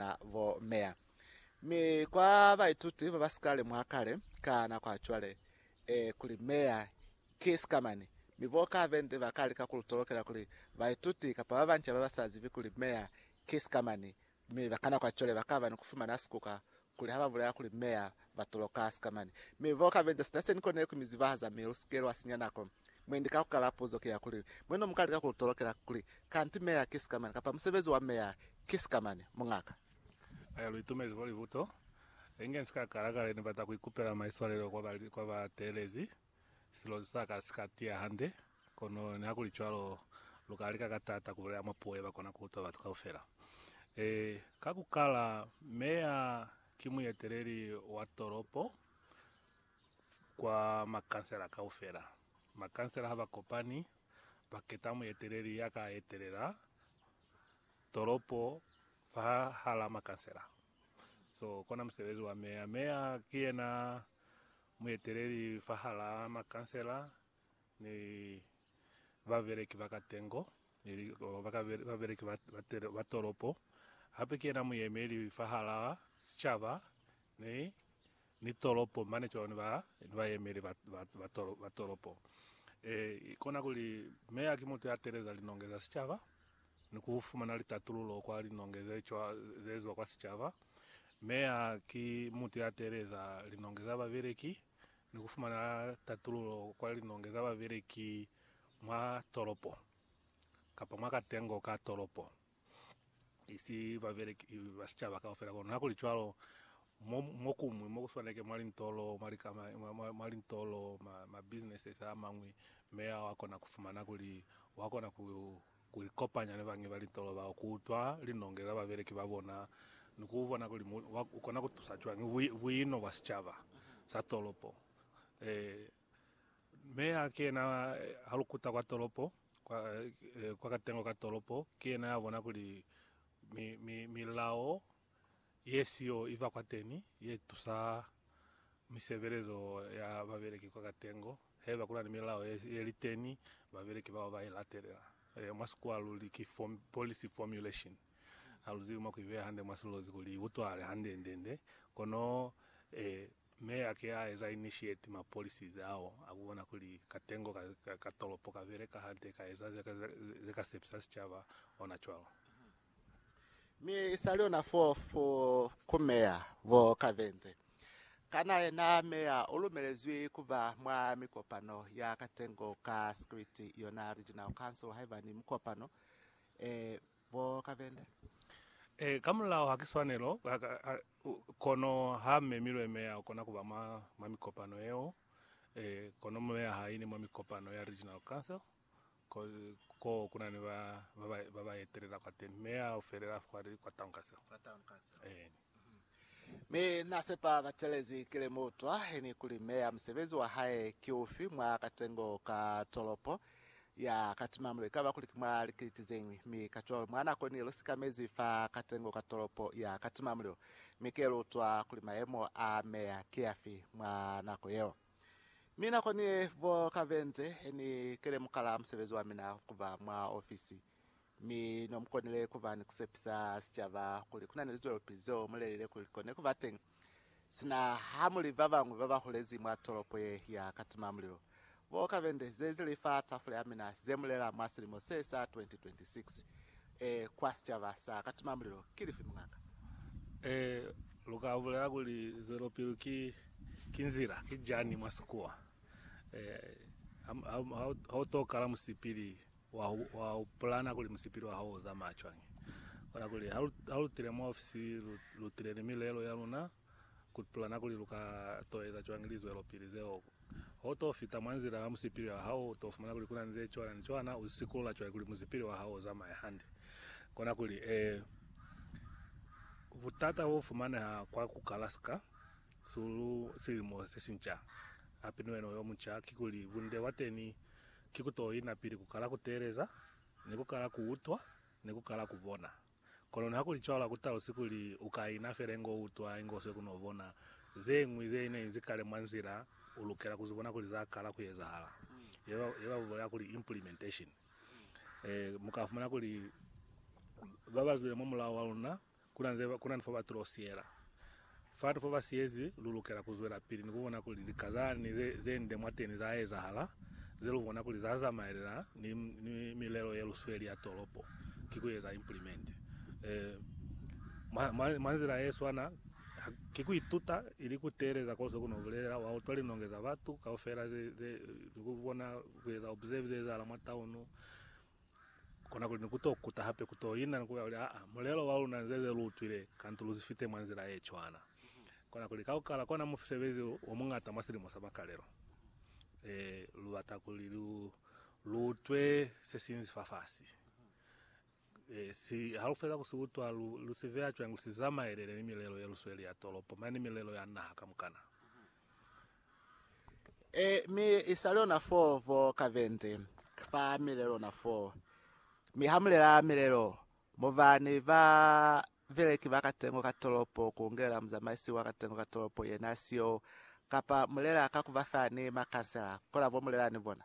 na bo meya. Mi kwa baituti ba ba si ka lemuha kale, ka nako ya cwale, e, kuli meya ki sikamani. Mi bo ka Vende ba ka lika ku lu tolokela kuli baituti kapa ba banca ba ba sa zibi kuli meya ki sikamani, mi ba ka nako ya cwale ba ka ba ni ku fumana sikuka kuli ha ba bulela kuli meya ba toloka sikamani, mi bo kabenta sina seni kone ku mi zibahaza mi lu sike lwa sinya nako. Mwendi ka ku kala puzo ki ya kuli, Mwe no muka lika ku lu tolokela kuli, Kanti meya ki sikamani, kapa musebezi wa meya ki sikamani? Mungaka. Haiba lu itumezi fo libuto, inge ni si ka kala kale ni bata ku ikupela maiswalelo kwa ba teelezi. Silozi sa ka si ka tiya hande, kono nihakulicwalo, lu ka lika ka taata ku bulela mwa puo ye ba kona ku utwa batu kaufela. E, ka ku kala, meya ki mueteleli wa tolopo kwa makansela kaufela. Makansela ha ba kopani, ba keta mueteleli ya ka etelela tolopo fahahala makansela. So, kona musebezi wa meya. Meya ki yena. Mueteleli fahalaa makansela ni babeleki ba katengo ili babeleki ba tolopo, hape ki yena muyemeli fahalaa sicaba ni tolopo mane cwalo ni bayemeli ba tolopo. Kona kuli meya ki mutu ya teleza linonge za sicaba. ni ku fumana litatululo kwa linonge ze cwa ze zwa kwa sicaba. Meya ki mutu ya teeleza linonge za babeleki ni ku fumana tatululo kwa linonge za babeleki mwa tolopo kapa mwa katengo ka tolopo, isi babeleki ba sicaba kaufela. Kono hakuli cwalo, Mo, mo kuñwi, mo ku swanake mwa lintolo, mwa likama, mwa, mwa, mwa lintolo, ma, ma businesses a mañwi, mi wa kona ku fumana kuli wa kona ku, ku ikopanya ni bañwi ba lintolo bao, ku utwa linonge za babeleki ba bona, ni ku bona kuli mu, wa, u kona ku tusa cwañi bu, buino bwa sicaba sa tolopo. Eh, Meya ki yena, ha lu kuta kwa tolopo, kwa, eh, kwa katengo ka tolopo, ki yena ya bona kuli mi, mi, milao yesiyo iba kwateni yetusa mi sebelezo ya babeleki kwa katengo haiba kunani milao yeliteni babeleki bao bailatelela mwa sikuwa luli ki policy formulation. Aluzibi mwa kuibeya hande mwa silozi kuli iutwahale hande ndende kono e me ake aeza initiate ma policies ao akubona kuli katengo ka tolopo kabeleka hande kaeza zekasepisa sicaba ona cwalo. Mi isali ona fo fo ku Meya bo Kavenze. Kana yena Meya u lumelezwi kuba mwa mikopano ya katengo ka script yona Regional Council haiba ni mukopano e bo Kavende? E, ka mulao ha ki swanelo, kono ha memilwe Meya ukona kuba mwa mwa mikopano yeo. E, kono Meya ha ini mwa mikopano ya Regional Council. Ko, ko ku na ni ba, ba, ba, ba ba etelela kwa teni, mi a felela fa li kwa Town Council. Kwa Town Council. Eeni. Mi na sepa ba telezi ki lemutwa, ni kuli Meya musebezi wa hae ki ufi mwa katengo ka tolopo, ya ka tima mulo ikaba kuli ki mwa likiliti zeñwi. Mi kacwalo, mwa nako ni lu sikamezi fa katengo ka tolopo, ya ka tima mulilo. Mi ki elutwa kuli mayemo a Meya ki afi mwa nako yeo. Mi nakoni ye, bo ka benze ni kelemuka la musebezi wa mina kuba mwa ofisi, mi no mu konile kuba ni kusepisa sicaba kuli kuna ni lizwelopili zeo mu lelile kuli li kone kuba teñi, sina ha mu li ba bañwi ba ba hulezi mwa tolopo ye ya katima mulilo. Bo ka benze, zezi li fa tafula ya mina, ze mu lela mwa silimo se sa 2026. Ee, kwa sicaba sa Katimamulilo. Ki lifi, muñaka? Ee, lu ka bulela kuli zwelopili ki, ki nzila, ki jani mwa sikuwa. Ee, ha, ha, ha u to kala musipili, wa, wa pulana kuli musipili wa hao u zamaya cwañi. Kono kuli ha lu, ha lu tile mwa ofisi, lu, lu tile ni milelo ya luna. kutulana kuli lu ka to eza cwañi lizwelopili zeo. Ho to fita mwa nzila ya musipili wa hao, u to fumana kuli ku na ni ze cwana ni cwana. U sikulula cwañi kuli musipili wa hao u zamaye hande? Kona kuli, Ee. Butata bo fumaneha kwa ku kala sika su lu silimo se si nca, hape ni wena u yo munca, kikuli, bunde bwa teni ki ku to ina pili ku kala ku teeleza, ni ku kala ku utwa, ni ku kala ku bona. Kono hakulicwalo hakutalusi kuli ukaina fela inge uutwa inge usweli kuno bona zeñwi zeine inzi kale mwa nzila. Ulukela kuzibona kuli zakala kuezahala, ye babulela kuli implementation. Mukafumana kuli babazwile mwamulao waluna kuna ni fo batulosiela Fatu fo ba siyezi, lu lukela ku zwelapili ni ku bona kuli lika za ni ze, ze nde mwateni za ezahala, ze lu bona kuli za zamaelana ni, ni milelo ye lu sweli ya tolopo, ki ku eza implement. E, mwa, mwa, mwa nzila ye swana, ha, ki ku ituta, ili ku teeleza ko se ku no bulelela, wa utwa linonge za batu kaufela ze, ze, ni ku bona, ku eza observe ze ezahala mwa taunu, Kona kuli ni ku to kuta hape ku to ina ni ku kuli, Aa, mulelo wa luna nze ze lu utwile, kantu lu zifite mwa nzila ye cwana. Kona kuli ka ku kala kona musebezi o muñata mwa silimo sa makalelo, e, lu bata kuli lu, lu utwe se si inzi fafasi. E, si, ha lu feza ku si utwa, lu, lu si veya cwañi kuli si zamaelele ni milelo ye lu sweli ya tolopo mane ni milelo ya naha kamukana? E, mi i sa lona fo vo ka vente, fa milelona fo. Mi ha mulela milelo, muba ni ba beleki ba katengo ka tolopo, ku ngela muzamaisi wa katengo ka tolopo, yena siyo, kapa mulela ka kuba fa ni makansela, kola bo mulela ni bona.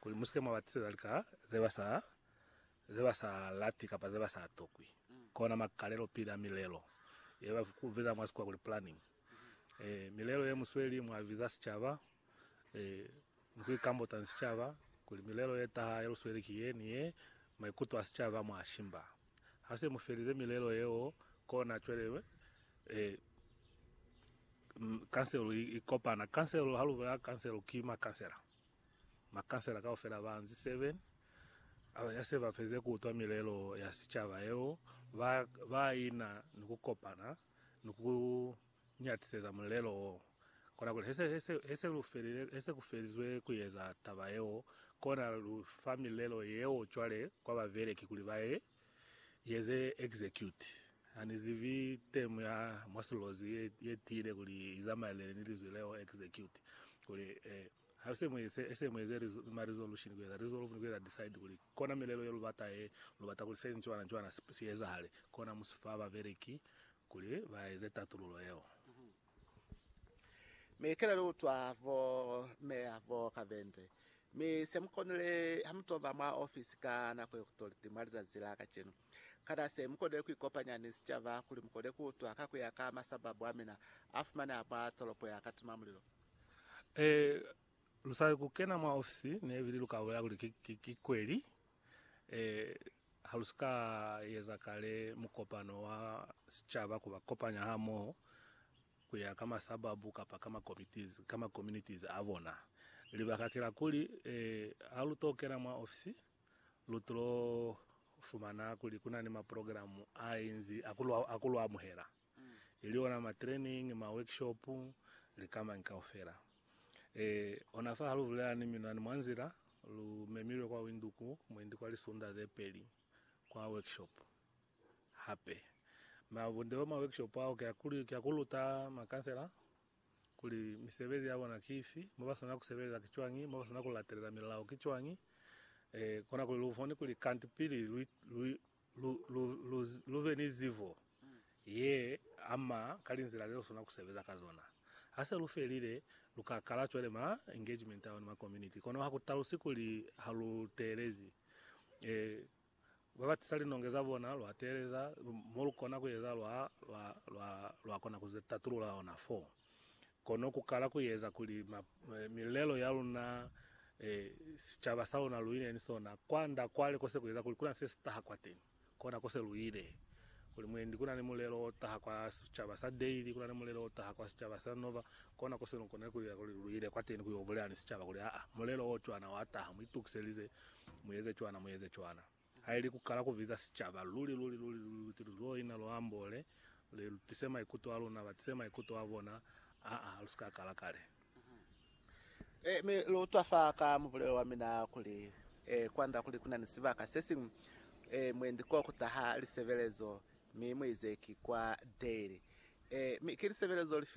Kuli musike mwa ba tiseza lika ze ba sa lati kapa ze ba sa tokwi, kona makalelo pili a milelo ye ba biza mwa Sikhuwa kuli planning. Milelo ye mu sweli mwa biza sicaba ni ku ikambota ni sicaba kuli milelo ye taha ye lu sweli ki ye ni ye, maikuto a sicaba mwa shimba. Ha se mu felize milelo yeo, kona cwale Kanselo i kopana. Kanselo, ha lu bolela Kanselo, ki makansela. Makansela kaufela ba nzi 7 a ya se ba felile ku utwa milelo ya sicaba yeo, ba, ba ina ni ku kopana ni ku nyatiseza mulelo wo. Kona kuli he se, he se, he se lu felile, he se ku felizwe ku eza taba yeo, kona lu fa milelo yeo cwale kwa babeleki kuli ba ye Yeze execute. Hanizibi term ya mwa silozi ye, ye tiile kuli izamaelele ni lizwi leo execute. Kuli, eh, ha se mu ese, ese mu eze reso- ma resolution kueza resolve ni kueza decide kuli kona milelo ye lubata ye, lubata kuli se ni cwana ni cwana si, si ezahale. Kona mu si fa babeleki kuli ba eze tatululo yeo. Mi kele lu utwa bo meya bo kabende. Mi se mu konile ha mu toba mwa ofisi ka nako ye kutoliti mwa lizazi la kacenu. Kana se mu konile ku ikopanya ni sicaba kuli mu kone ku utwa ka ku ya ka masababu a mina a fumaneha mwa tolopo ya Katimamulilo? Ee, lu sa ku kena mwa ofisi, ne ibili lu ka bolela kuli ki, ki, ki kweli. Ee, ha lu si ka eza kale mukopano wa sicaba ku ba kopanya hamoho ku ya ka masababu kapa ka makomitiz, ka makommunitiz a bona. Libaka ki la kuli, ee, ha lu t'o kena mwa ofisi, lu t'o fumana kuli ku na ni maprogramu a inzi a ku lu, a ku lu amuhela. ili ona ma training, ma workshop, likamañi kaufela. E, ona fa ha lu bulela ni minwani mwa nzila, lu memilwe kwa Windhoek mwendi kwa lisunda ze peli, kwa workshop hape. Ma bunde bwa ma workshop ao ki a kuli, ki a ku luta ma kansela kuli misebezi ya bona ki ifi, mo ba swanela ku sebeleza ki cwañi, mo ba swanela ku latelela milao ki cwañi, e, kona kuli lu bone kuli kanti pili lu, lu, Lu, lu, lu, lu be ni zibo ye ama ka linzila ze lu sona ku sebeza ka zona. Ha se lu felile, lu ka kala cwale ma engagement ao ni ma community. Kono ha ku talusi kuli ha lu teelezi. E, ba ba tisa linonge za bona, lwa teeleza mo lu kona ku eza, lwa, lwa, lwa, lwa kona ku ze tatulula ona foo. Kono ku kala ku eza kuli ma, eh, milelo ya luna, eh, sicaba sa luna lu ine ni sona, kwa nda kwale ko se ku eza kuli ku na se si taha kwateni. Kona ko se lu ile. Kuli mwendi ku na ni mulelo o taha kwa sicaba sa Daily, ku na ni mulelo o taha kwa sicaba sa Nova, kona ko se lu konile ku ila kuli lu ile kwateni ku yo bulela ni sicaba kuli, Aa, mulelo o cwana wa taha, mu itukiselize, mu eze cwana, mu eze cwana. Haili ku kala ku biza sicaba luli, luli, luli, luli, lu tili lwo ina, lwo ambole, li lu tise maikuto a luna, ba tise maikuto a bona, aa, ha lu si ka kala kale. E, mi lu twa fa ka mubulelo wa mina kuli, e, kwanda kuli ku na ni sibaka se siñwi, e, mwendi ko ku taha lisebelezo, mi mu ize ki kwa Dale. E, mi ki lisebelezo lifi